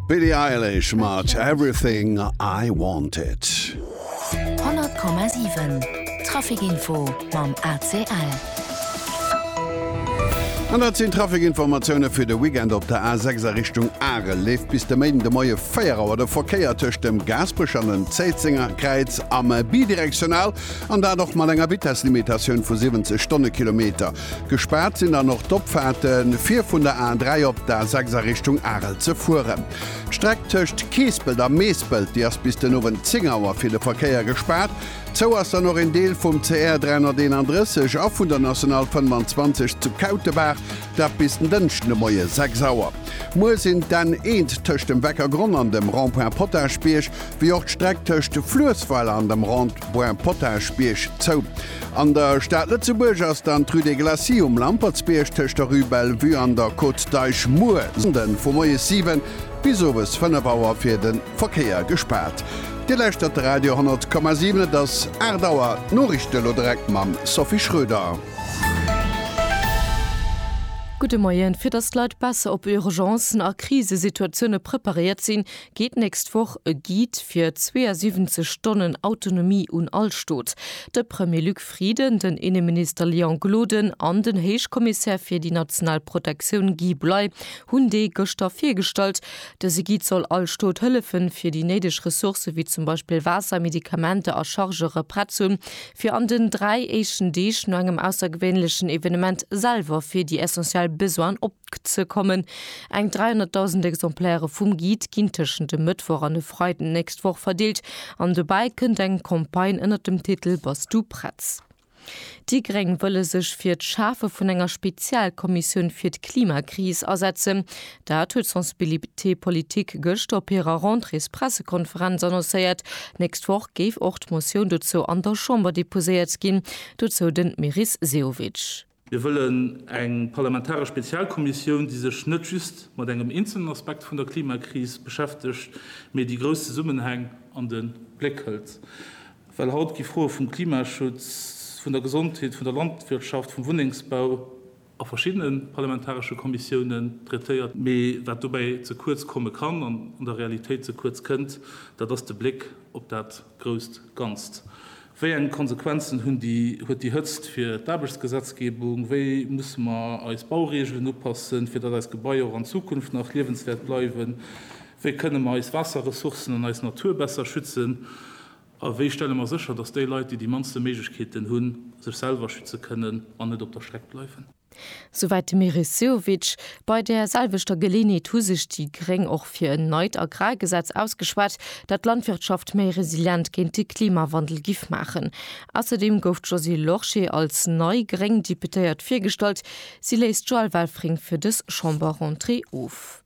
Billie Eilish mat Everything I Wanted. 100,7 Trafikinfo mam ACL. An dat sinn d'Trafikinformatioune fir de Weekend. Op der A 6 a Richtung Arel leeft bis de Méiden de Moie 4 Auer de Verkéier tëscht dem Gaasperech an dem Zéitzenger Kräiz am Bidirektional, an dat och mat enger Vitesslimitatioun vu 70 Stonnekilometer. Gespaart sinn dann och d'Opfaarte fir vun der A3 op d'A 6 a Richtung Arel ze fueren. D'Streck tëscht Keespelt a Meespelt, déi ass bis den Owend 10 Auer fir de Verkéier gespaart. Zou ass dann och een Deel vum CR 331 a vun der National 25 zu Kautebaach, dat bis den Dënschden de Moie 6 Auer. Muer sinn d'N 1 tëscht dem Weckergronn an dem Rond-point Potagebierg, wéi och d'Streck tëscht Fluessweiler an dem Rond-point Potagebierg zou. An der Stad Lëtzebuerg ass dann d'Rue des Glacis um Lampertsbierg tëscht der Rue Bellevue an der Côte d'Eich muer Sonnden vu moies 7 bis owes 5 Auer fir de Verkéier gespaart. Dir lauschtert de Radio 10,7, et ass 8 Auer. D'Noriichten elo direkt mam Sophie Schröder. Gudde Moien. Fir datt d'Leit besser op Urgencen a Krisesituatioune preparéiert sinn, geet d'nächst Woch e Guide fir 72 Stonnen Autonomie un all Stot. De Premier Luc Frieden, den Inneminister Léon Gloden an den Héichkommissär fir déi national Protektioun Guy Bley hunn dee gëschter virgestallt. Dëse Guide soll all Stot hëllefen, fir déi néideg Ressourcë wéi zum Beispill Waasser, Medikamenter a Chargere prett ze hunn, fir an den dräi éischten Deeg no engem aussergewéinlechen Evenement selwer fir déi essentiell Besoinen ze kommen. Eng 300.000 Exemplaire vum Guide ginn tëschent e Mëttwoch an e Freiden d'nächst Woch verdeelt an dobäi kënnt eng Campagne ënnert dem Titel Bass du prett? Déi Gréng wëlle sech fir d'Schafe vun enger Spezialkommissioun fir d'Klimakris asetzen. Dat huet d'Sensibilité Politique gëschter op hirer Rentréespressekonferenz annoncéiert. D'nächst Woch géif och d'Motioun dozou an der Chamber deposéiert ginn. Dozou den Meris Sehovic. Mir wëllen eng parlamentaresch Spezialkommissioun, déi sech net just mat engem eenzelnen Aspekt vun der Klimakris beschäftegt, mee déi grouss Zesummenhäng an de Bléck hëlt. Well haut gi Froe vum Klimaschutz, vun der Gesondheet, vun der Landwirtschaft, vum Wunnengsbau a verschiddene parlamentaresche Kommissiounen traitéiert. Mee wat dobäi ze kuerz komme kann an an der Realitéit ze kuerz kënnt, dat ass de Bléck op dat, grousst Ganzt? Wéi eng Konsequenzen hunn déi, huet déi Hëtzt fir d'Aarbechtsgesetzgebung? Wéi musse mer eis Baureegelen upassen, fir datt eis Gebaier och an Zukunft nach liewenswäert bleiwen? Wéi kënne mer eis Waasserressourcen an eis Natur besser schützen? A wéi stelle mer sécher, datt déi Leit, déi déi mannste Méiglechkeeten hunn, sech selwer schütze kënnen an net op der Streck bleiwen? Souwäit de Meris Sehovic. Bei där selwechter Geleenheet hu sech déi Gréng och fir en neit Agrargesetz ausgeschwat, dat d'Landwirtschaft méi resilient géint de Klimawandel giff maachen. Ausserdeem gouf d'Josée Lorsché als nei gréng Deputéiert virgestallt. Si léist d'Joëlle Welfring fir dës Chamberrentrée of.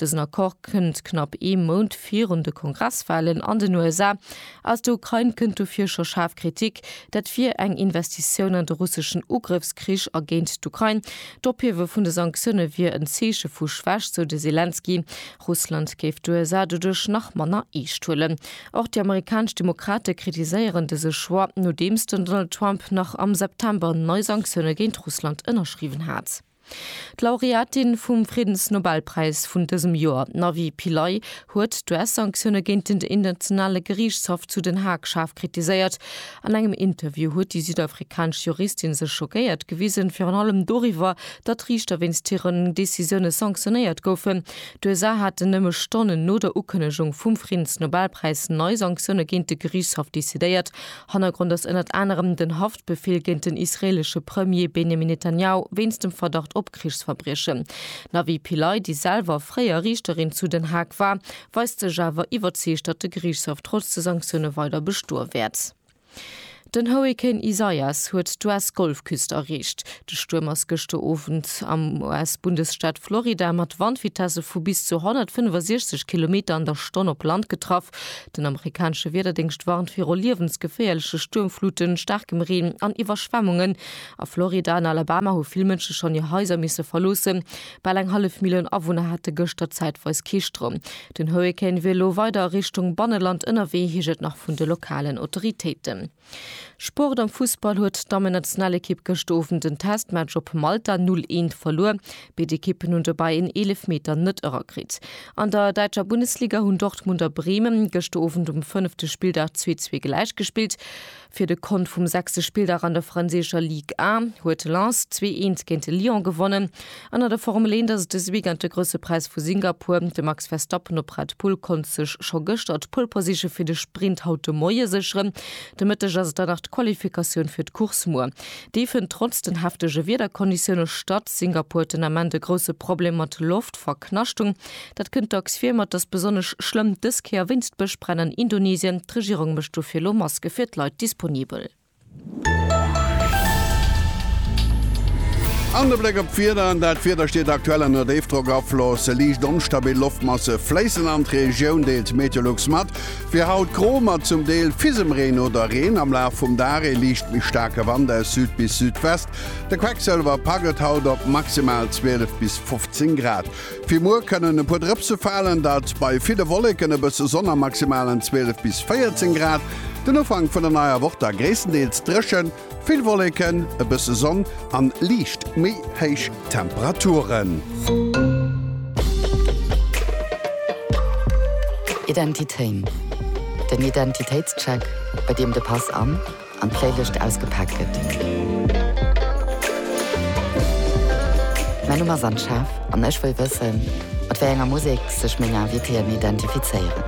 Dësen Accord kënnt knapp ee Mount virun de Kongresswalen an den USA. Aus der Ukrain kënnt dofir scho schaarf Kritik, dat wier eng Investitioun an de russeschen Ugrëffskrich a géint d'Ukrain. D'Ophiewe vun de Sanktioune wier en Zeeche vu Schwächt, sou de Selenskyj. Russland géif d'USA doduerch nach manner eescht huelen. Och déi amerikanesch Demokrate kritiséieren dëse Choix, nodeems den Donald Trump nach am September nei Sanktioune géint Russland ënnerschriwwen hat. D'Laureatin vum Friddensnobelpräis vun dësem Joer, d'Navi Pillay, huet d'US-Sanktioune géint den Internationale Geriichtshaff zu Den Haag schaarf kritiséiert. An engem Interview huet déi südafrikanesch Juristin sech schockéiert gewisen, virun allem doriwwer, datt Riichter wéinst hiren Decisioune sanktionéiert goufen. D'USA haten nëmme Stonnen no der Ukënnegung vum Friddensnobelpräis nei Sanktioune géint de Geriichtshaff decidéiert. Hannergrond ass ënnert anerem den Haff, D'Befehl géint den israeelesche Premier Benjamin Netanjahu wéinst dem Verdacht op Krichsverbriechen. D'Navi Pillay, déi selwer fréier Riichterin zu Den Haag war, weist sech awer iwwerzeegt, datt de Geriichtshaff trotz de Sanktioune weider bestoe wäert. Den Hurrikan Isaias huet d'US-Golfküst erreecht. De Stuerm ass gëschter Owend am US-Bundesstaat Florida mat Wandvitesse vu bis zu 165 Kilometer an der Stonn op Land getraff. Den amerikanesche Wiederdéngscht warnt viru liewensgeféierleche Stuermfluten, staarkem Reen an Iwwerschwemmungen. A Florida an Alabama hu vill Mënsche schonn hir Haiser misse verloossen. Bal eng hallef Millioun Awunner hate gëschter zäitweis kee Stroum. Den Hurrikan wier elo weider a Richtung Banneland ënnerwee, heescht et nach vun de lokalen Autoritéiten. Sport am Fussball huet d'Dammennationalekipp gëscht Owend en Testmatch op Malta 0, 1 verluer. Béid Ekippen hunn dobäi en Eelefmeter net erakritt. An der däitscher Bundesliga hunn Dortmund a Bremen gëscht Owend um fënnefte Spilldag 2, 2 gläich gespillt. Fir de Kont vum sechste Spilldag an der franséischer Ligue 1 huet Lens 2, 1 géint Lyon gewonnen. An an der Formel 1 ass et dëse Weekend de Grousse Präis vu Singapur. De Max Verstappen op Red Bull konnt sech scho gëschter d'Pole Position fir de Sprint haut de Moie sécheren. De Mëtteg ass et dann nach d'Qualifikatioun fir d'Course muer. Déi fënnt trotz den heftege Wiederkonditioune statt. Singapur huet den Ament e grousse Problem mat Loftverknaschtung. Dat kënnt dacks vir, ma et ass besonnesch schlëmm dës Kéier wéinst Bëschbränn an Indonesien. D'Regierung mécht dofir elo Maske fir d'Leit disponibel. An de Bléck op d'Wieder, an dat Wieder steet aktuell ënner Déifdrockafloss. Liicht onstabil Loftmasse fléissen an d'Regioun, deelt Meteolux mat. Fir haut gro mat zum Deel fissem Reen oder Reen. Am Laf vum Dag ee liicht méi staarke Wand aus Süd bis Südwest. De Quecksëlwer pack et haut op maximal 12 bis 15 Grad. Fir muer kënnen e puer Drëpse falen, dat bei ville Wolleken, e bësse Sonn a maximalen 12 bis 14 Grad. Den Ufank vun der neier Woch da gréisstendeels dréchen, vill Wolleken, e bësse Sonn a liicht méi héich Temperaturen. Identitéin, den Identitéitscheck, bei deem de Pass an. an d'Léiwécht ausgepaakt gëtt. Mäin Numm ass Anne Schaaf an ech wëll wëssen, mat wéi enger Musek sech meng Invitéen identifizéieren.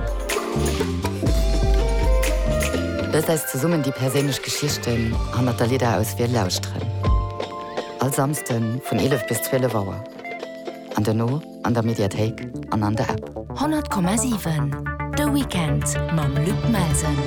Loosst eis zesummen déi perséinlech Geschichten hannert der Lidderauswiel lauschteren. All Samsden vun 11 bis 12 Auer. An duerno? an der Mediathéik an an der App. 100,7 De Weekend mam Luc Melsen.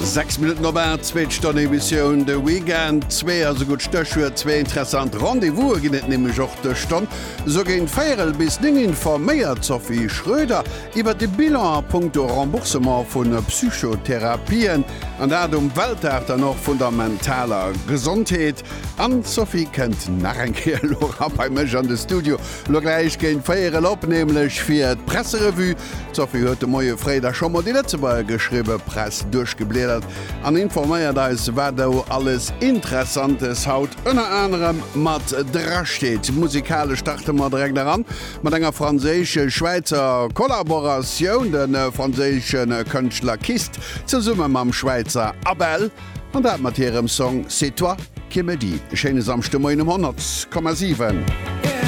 Sechs Minutten op 8, zweet Stonn Emissioun De Weekend. Zwee ass e gutt Stéchuert, zwee interessant Rendez-vouse ginn et nämlech och dës Stonn. Sou géint véierel bis néng informéiert d'Sophie Schröder iwwer de Bilan a Punkto Remboursement vu Psychotherapien, an dat um Weltdag dann och vun der mentaler Gesondheet. An d'Sophie kënnt nach eng Kéier elo erab bei mech an de Studio. Elo gläich géint véier elo op, nämlech fir d'Presserevue. D'Sophie huet de Moie fréi da scho mol déi Lëtzebuerger geschriwwe Press duerchgebliedert an informéiert eis, wat do alles Interessantes haut ënner anerem mat dra steet. Musikalesch starte mer direkt eran mat enger franséisch-schwäizer Kollaboratioun, de franséische Kënschtler Kist zesumme mam Schwäizer Abel. An dat mat hirem Song C'est toi qui me dis. E schéine Samschdemoien um 100,7.